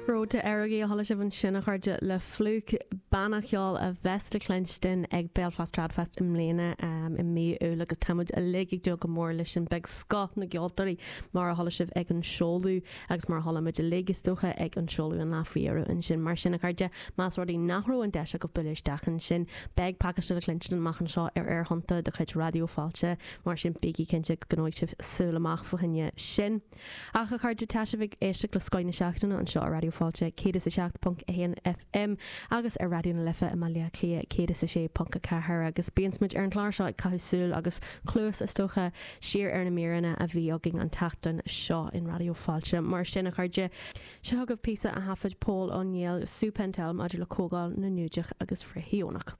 Ród go hÉirinn a chuala sibh ansin, a chairde, le Flook, banna ceoil a bheas le cluinstin ag Belfast Tradfest i mbliana i mí Iúil agus tá muid uilig ag dúil go mór leis sin. Beidh scoth na gceoltóirí, mar a chuala sibh ag an seoladh agus mar a chuala muid uilig, is dócha, ag an seoladh an lá faoi dheireadh ansin. Mar sin, a chairde, más rud é nach raibh an deis agaibh bualadh isteach ansin, beidh pacáiste le cluinstin amach anseo ar aerthonnta de chuid Raidió Fáilte, mar sin bígí cinnte go gcoinneoidh sibh súil amach fá choinne sin. Ach, a chairde, tá sibh ag éisteacht le Scoth na Seachtaine anseo ar Raidió Fáilte 107.1 FM agus ar Raidió na Life i mBaile Átha Cliath 106.4 agus bíonns muid ar an chlár seo ag caitheamh súil, agus cluas is dócha, siar ar na míreanna a bhí againn an tseachtain seo in Raidió Fáilte. Mar sin, a chairde, seo chugaibh píosa a thaifead Pól Ó Néill le Sue Pentel maidir le Comhdháil na nGiúdach Frith-Shíónach.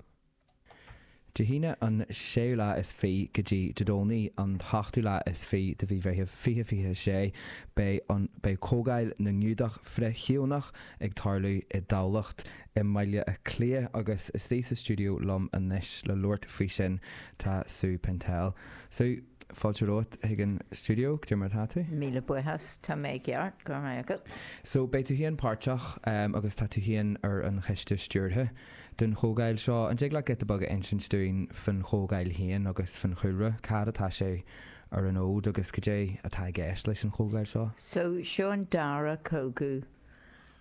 Dé hAoine an séú lá is fiche go dtí Dé Domhnaigh an t-ochtú lá is fiche de mhí Mheithimh 2026, beidh an, beidh Comhdháil na nGiúdach Frith-Shíónach ag tarlú i dTamhlacht, i mBaile Átha Cliath agus istigh sa stiúideo liom anois le labhairt faoi sin tá Sue Pentel. Sue? Fáilte romhat chuig an stiúideo, cad é mar atá tú. Míle buíochas, tá mé i gceart, go raibh maith agat. So, beidh tú féin páirteach agus tá tú féin ar an choiste stiúrtha den chomhdháil seo. An dtig leat giota beag a insint dúinn fán chomhdháil féin agus fán chúlra, cá fhad atá sé ar an fhód agus cad é atá i gceist leis an chomhdháil seo? So, seo an dara comhdháil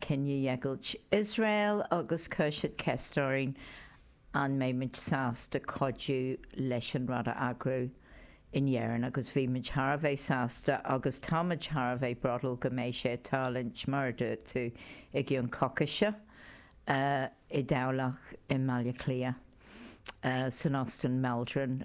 Cinedheighilt Iosrael agus chuir siad ceist orainn an mbeidh muid sásta cuidiú leis an rud a eagrú in Éirinn agus bhí muid thar a bheith sásta agus tá muid thar a bheith bródúil go mbeidh sé ag tarlúint mar a dúirt tú i gcionn coicíse, i dTamhlacht, i mBaile Átha Cliath, san Óstán Maldron.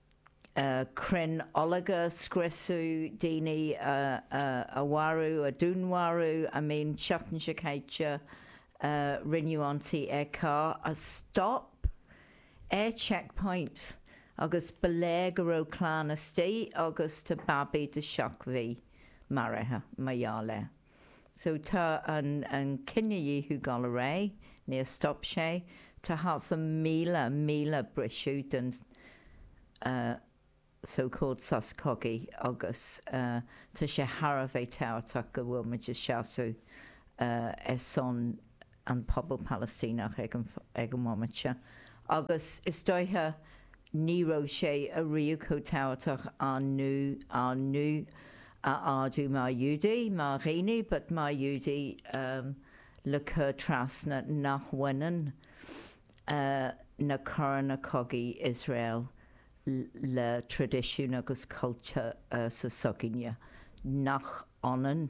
crainn ológ a scriosadh, daoine a mharú, a dúnmharú, I mean, seachtain seo caite rinneadh ionsaí ar carr a stop ar checkpoint, agus ba léir go raibh clann istigh agus tá babaí de sheacht mhí maraithe mar gheall air. So tá an cinedhíothú dul ar aghaidh, níor stop sé, tá thart ar 1,000, míle, briseadh den so called sos cogaidh agus tá sé thar a bheith tabhachtach go bhfuil muid ag seasamh ar son an pobal Palaistíneach ag an, ag an bhomaite seo agus is dóiche ní raibh sé ariamh chomh tábhachtach ár nguth, ár nguth a ardú mar Ghiúdaigh, mar dhaoine but mar Ghiúdaigh le cur trasna nach bhaineann na coireanna cogaidh Iosrael le traidisiún agus cultúr sa s'againne, nach ionann.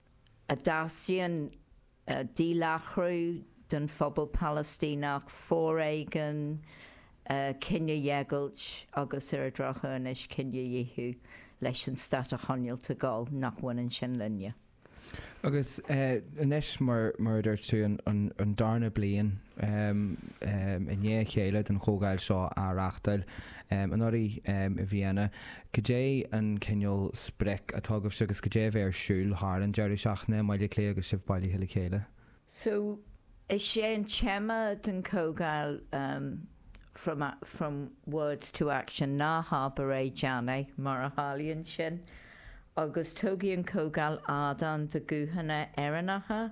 a dteastaíonn díláithriú den phobal Palaistíneach, foréigean, cinedheighilt agus, ar an drochuair anois, cinedhíothú leis an stát a choinneáilt ag gabháil, nach mbaineann sin linne. Agus anois, mar a dúirt tú, an darna bliain i ndiaidh a chéile den chomhdháil seo á reáchtáil anuraidh i Vienna, Cad é an cineál sprioc atá agaibhse agus cad é a bheidh ar siúl thar an deireadh seachtaine i mBaile Átha Cliath agus sibh bailithe le chéile? So, is é an téama den chomhdháil from from words to action, ná habair é, déan é, mar a tharlaíonn sin, agus tugfaidh an chomhdháil ardán do ghuthanna Éireannacha,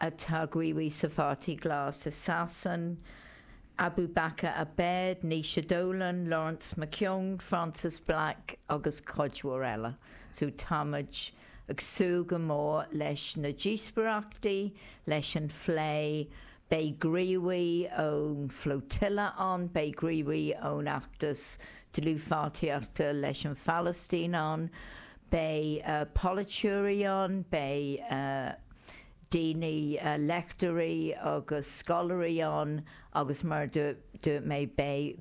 atá gníomhach sa Pháirtí Glas i Sasain, Abubaker Abed, Naoise Dolan, Laurence McKeown, Frances Black agus cuid mhór eile. So táimid ag súil go mór leis na díospóireachtaí, leis an phlé. Beidh gníomhaí ón Flotilla ann, beidh gníomhaí ón Fheachtas Dlúthpháirtíochta leis an Phalaistín ann, beidh polaiteoirí ann, beidh. daoine, léachtóirí agus scoláirí ann agus mar dúirt mé beidh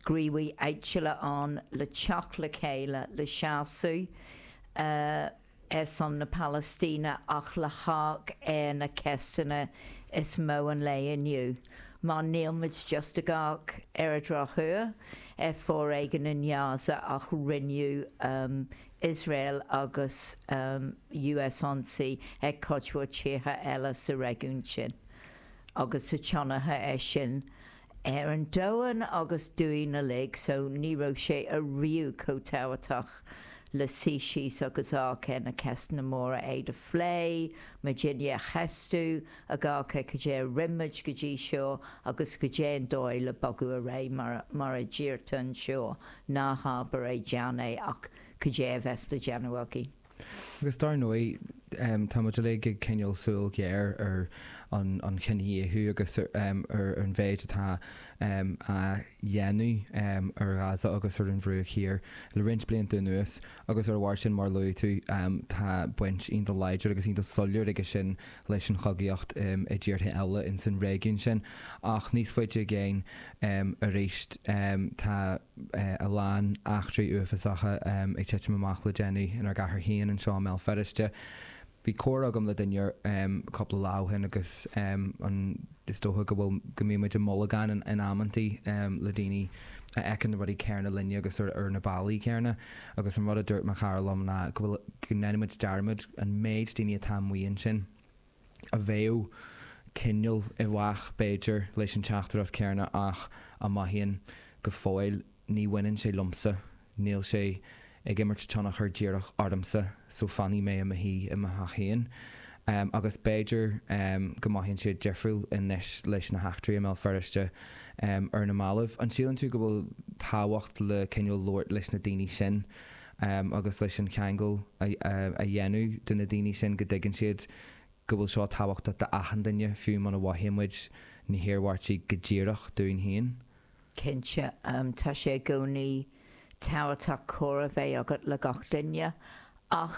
gníomhaithe áitiúla ann le teacht le chéile, le seasamh ar son na Palaistíne ach le hamharc ar na ceisteanna is mó an lae inniu, mar nílimid just ag amharc ar an drochuair ar foréigean i nGaza ach rinneadh Iosrael agus US ionsaí ar chuid mhór tíortha eile sa réigiún sin agus tá tionchar aige sin ar an domhan agus dúinn uilig so ní raibh sé ariamh chomh tábhachtach le suí síos agus amharc ar na ceisteanna móra, iad a phlé muid féin a cheistiú, ag amharc ar cad é a rinn muid go dtí seo agus cad é an dóigh le bogadh ar aghaidh mar a deirtear anseo Ná habair é, déan é, ach cad é a bheas le déanamh againn? Agus dar ndóigh, tá muid uilig ag coinneáil súil ghéar ar an chinedhíothú agus ar an mhéid atá á dhéanamh ar Ghaza agus ar an Bhruach Thiar le roinnt blianta anuas, Agus ar a bharr sin, mar a luaigh tú, tá baint iontach láidir agus iontach soiléir aige sin leis an chogaíocht i dtíortha eile ins an réigiún sin. Ach níos faide i gcéin aríst tá a lán eachtraí uafásacha ag titim amach le déanaí inár gcathair féin anseo i mBéal Feirste. Bhí comhrá agam le duine cúpla lá ó shin agus an. Is dócha go bhfuil, go mbíonn muid i mbolgán in amanntaí le daoine a fheiceann na rudaí céanna linne agus ar na bealaí céanna agus an rud a dúirt mo chara liom ná go bhfuil, go ndéanann muid dearmad an méid daoine atá amuigh ansin a bheadh cineál i bhfách b'fhéidir leis an teachtaireacht céanna ach a mothaíonn go fóill Ní bhaineann sé liomsa. Níl sé ag imirt tionchar díreach ormsa, so fanfaidh mé i mo shuí i mo theach féin. Agus b'fhéidir go mothaíonn siad difriúil anois leis na heachtraí i mBéal Feirste ar na mallaibh. An síleann tú go bhfuil tábhacht le cineál labhairt leis na daoine sin agus leis an cheangal a dhéanamh do na daoine sin go dtuigeann siad go bhfuil seo tábhachtach d'achan duine, fiú muna mhothaíonn muid na hiarmhairtí go díreach dúinn féin? Cinnte, tá sé i gcónaí tábhachtach comhrá bheith agat le gach duine, ach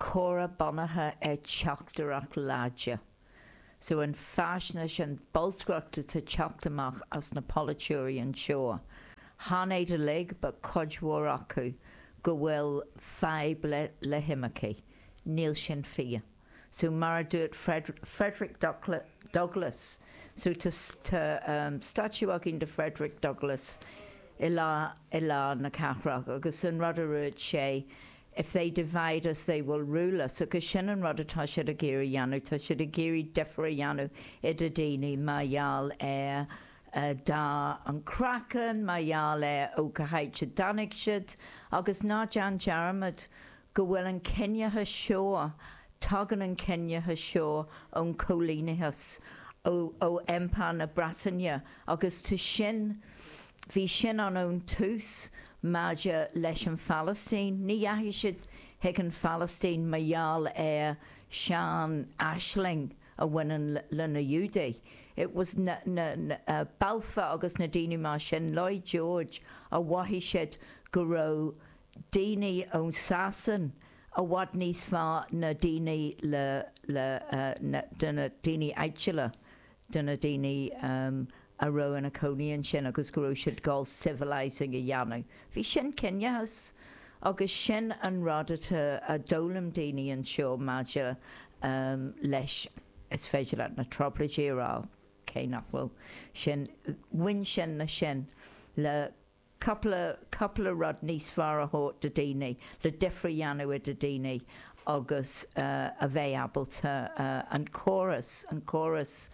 comhrá bunaithe ar teachtaireacht láidir. So, an faisnéis, an bolscaireacht atá ag teacht amach as na polaiteoirí anseo, chan iad uilig, but cuid mhór acu, go bhfuil fadhb le himircigh. Níl sin fíor. so mar a dúirt Frederick Douglass so tá statue againn de Frederick Douglass i lár na cathrach agus an rud a dúirt sé if they divide us they will rule us agus sin an rud atá siad ag iarraidh dhéanamh, tá siad ag iarraidh difear a dhéanamh idir daoine mar gheall ar dath an craiceann, mar gheall ar ó cá háit a dtáinig siad agus ná déan dearmad go bhfuil an ciníochas seo, tagann an ciníochas seo ón coilíneachas, ó, ó Empire na Breataine agus tá sin, bhí sin ann ón tús maidir leis an Phalaistín, ní dheachaigh siad chuig an Phalaistín mar gheall ar sean aisling a bhaineann le na Iúdaigh, it was na, na, na, Balfour agus na daoine mar sin, Lloyd George, a mhothaigh siad go raibh daoine ón Sasain i bhfad níos fearr ná daoine le, le, na, de na daoine áitiúla, de na daoine a raibh ina cónaí ansin agus go raibh siad ag gabháil civilising a dhéanamh. Bhí sin ciníochas agus sin an rud atá a d'fhoghlaim daoine anseo maidir leis, is féidir leat na Trioblóidí a rá, cé nach bhfuil sin, bhain sin le sin, le, Cúpla, cúpla rud níos fearr a thabhairt do daoine, le difir a dhéanamh do daoine agus a bheith ábalta an córas, an córas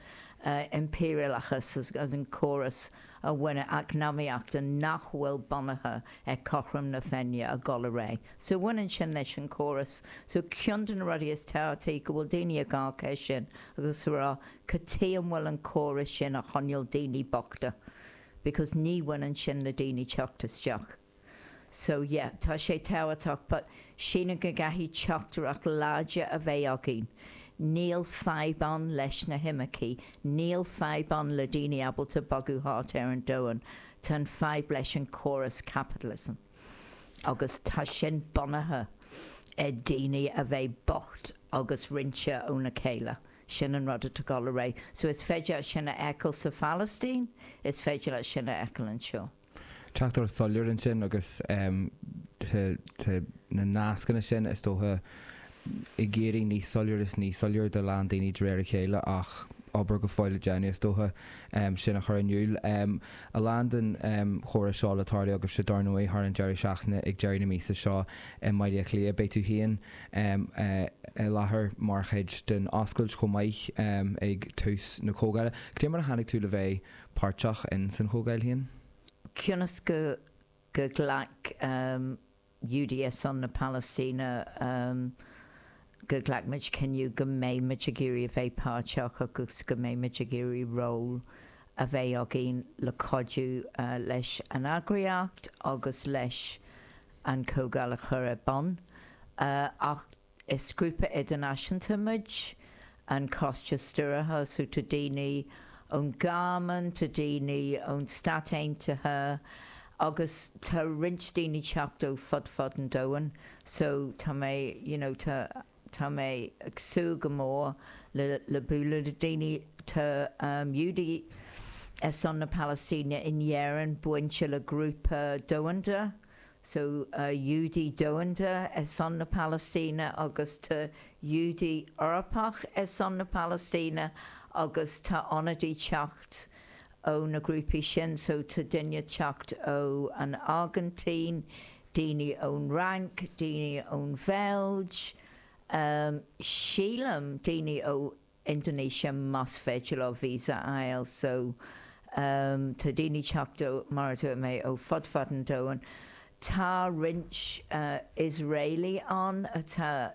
impiriúlachas agus an córas a bhain a eacnamaíochta nach bhfuil bunaithe ar cothrom na Féinne a dhul i réidh. So bhaineann sin leis an córas. So ceann de na rudaí is tábhachtaí go bhfuil daoine ag gá cé sin agus a rá, cad tuige a bhfuil an córas sin ag coinneáil daoine bochta? because ní bhaineann sin le daoine teacht isteach so yeah tá sé tábhachtach but sílim go gcaithfidh teachtaireacht láidir a bheith againn níl fadhb ann leis na himircigh níl fadhb ann le daoine ábalta bogadh thart ar an domhan tá an fadhb leis an córas capitalism agus tá sin bunaithe ar daoine a bheith bocht agus roinnte óna chéile. Sin an rud atá ag dul ar aghaidh. So is féidir leat sin a fheiceáil sa Phalaistín, is féidir leat sin a fheiceáil anseo. Teachtaireacht shoiléir ansin agus tá na nascanna sin, is dócha, ag éirí níos soiléir is níos soiléir do a lán daoine de réir a chéile ach obair go fóill le déanamh, is dócha, sin a chur in iúl. A lán den chomhrá seo le tarlú agaibhse dar ndóigh thar an deireadh seachtaine ag deireadh na míosa seo i mBaile Átha Cliath, beidh tú féin, i láthair mar chuid den oscailt chomh maith ag tús na comhdhála. Cad é mar a tháinig tú le bheith páirteach in san chomhdháil féin? Cionn is go ghlac Giúdaigh ar son na Palaistíne, go ghlac muid cinneadh go mbeidh muid ag iarraidh a bheith páirteach agus go mbeidh muid ag iarraidh ról a bheith againn le cuidiú leis an eagraíocht agus leis an chomhdháil a chur ar bun, ach is grúpa idirnáisiúnta muid, an Coiste Stiúrtha, so tá daoine ón Ghearmáin, tá daoine ón Stáit Aontaithe agus tá roinnt daoine teacht ó fud fad an domhain, so tá mé, you know, tá. Tá mé ag súil go mór le bualadh le daoine. Tá Giúdaigh ar son na Palaistíne in Éirinn bainte le grúpa domhanda, so Giúdaigh Domhanda ar son na Palaistíne, agus tá Giúdaigh Eorpach ar son na Palaistíne, agus tá ionadaí teacht ó na grúpaí sin so tá daoine teacht ó an Airgintín, daoine ón Fhrainc, daoine ón Bheilg, em, sílim daoine ó Indonesia mas féidir leo visa a fháil so em tá daoine teacht ó mar a dúirt mé ó fud fad an domhain. Tá roinnt eh Iosraelaigh ann atá.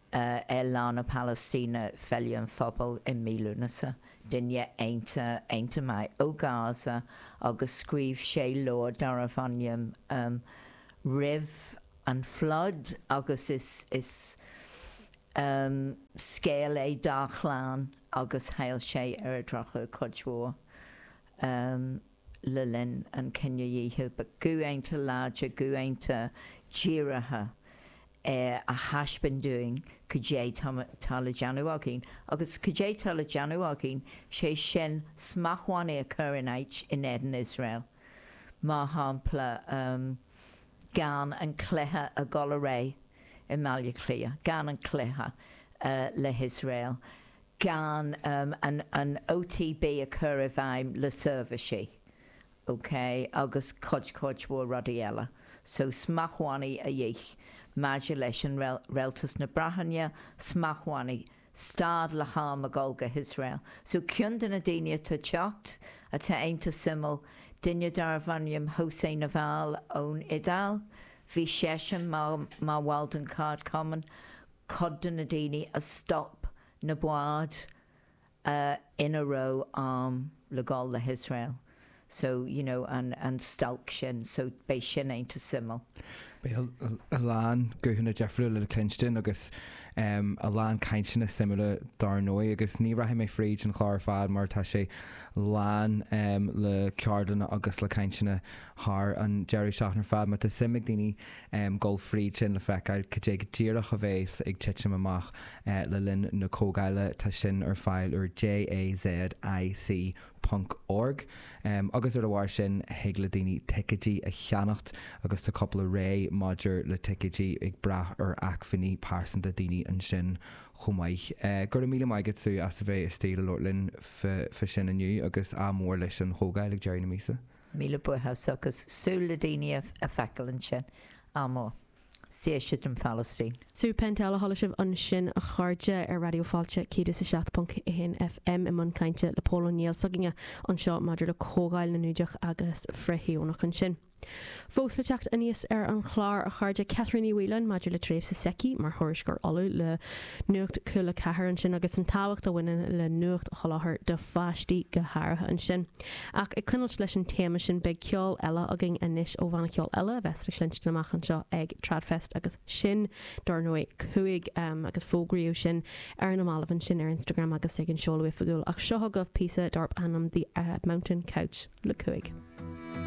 ar Lá na Palaistíne, Féile an Phobail i mí Lúnasa, duine iontach, iontach maith ó Gaza agus scríobh sé leabhar darbh ainm roimh an Flood agus is scéal é dá chlann agus chaill sé ar an drochuair cuid mhór. le linn an chinedhíothaidh, but guthanna láidre, guthanna díreacha a thaispeáin dúinn cad é tá le déanamh againn. Agus cad é tá le déanamh againn, sé sin, smachtbhannaí a chur in áit in éadan Iosrael, mar shampla, gan an cluiche a dhul ar aghaidh i mBaile Átha Cliath, gan an cluiche le hIosrael. gan an OTB a chur i bhfeidhm le seirbhísí OK agus cuid, cuid mhór rudaí eile. So, smachtbhannaí a dhíth maidir le Rialtas na Breataine, smachtbhannaí, stad le harm a dhul go hIosrael. So, cionn de na daoine atá teacht, atá iontach suimiúil, duine darbh ainm José Nivoi ón Iodáil, bhí seisean mar bhall den Cheardchumann, cuid de na daoine a stop na báid ina raibh airm le dhul go hIosrael, so, you know, an stailc sin, so beidh sin iontach suimiúil. Beidh a lán guthanna difriúla le cluinstin agus a lán cainteanna suimiúla dár ndóigh, agus ní rachaidh mé fríd an chlár ar fad mar tá sé lán le ceardlanna agus le cainteanna thar an deireadh seachtaine ar fad, má tá suim ag daoine ghabháil fríd sin le feiceáil cad é go díreach a bheas ag titim amach le linn na comhdhála, tá sin ar fáil ar jazzic.org. Agus ar a bharr sin, thig le daoine ticéidí a cheannach agus tá cúpla rogha maidir le ticéidí ag brath ar acmhainní pearsanta daoine ansin chomh maith. Go raibh míle maith agat, Sue, as a bheith istigh le labhairt linn fá sin inniu agus ádh mór leis an chomhdháil ag deireadh na míosa. Míle buíochas agus súil le daoine a fheiceáil ansin agus saoirse don Phalaistín. Sue Pentel a chuala sibh ansin a chairde ar Raidió Fáilte 107.1 FM i mbun cainte le Pól Ó Néill s'againne anseo maidir le Comhdháil na nIúdach agus Frith-Shíónach ansin. Fós le teacht aníos ar an chlár a chairde Catherine Uí Mhaoileáin maidir le tréimhse s'aici mar thuairisceoir Uladh le Nuacht Cúla 4 ansin agus an tábhacht a bhaineann le nuacht a sholáthar do pháistí go háirithe ansin. Ach ag coinneáilt leis an téama sin, beidh ceol eile againn anois ó bhanna ceoil eile a bheas le cluinstin amach anseo ag TradFest agus sin, dár ndóigh, Cúig, agus fógraíodh sin ar na mallaibh ansin ar Instagram agus ag an seoladh oifigiúil, ach seo chugaibh píosa darb ainm 'The Mountain Couch' le Cúig.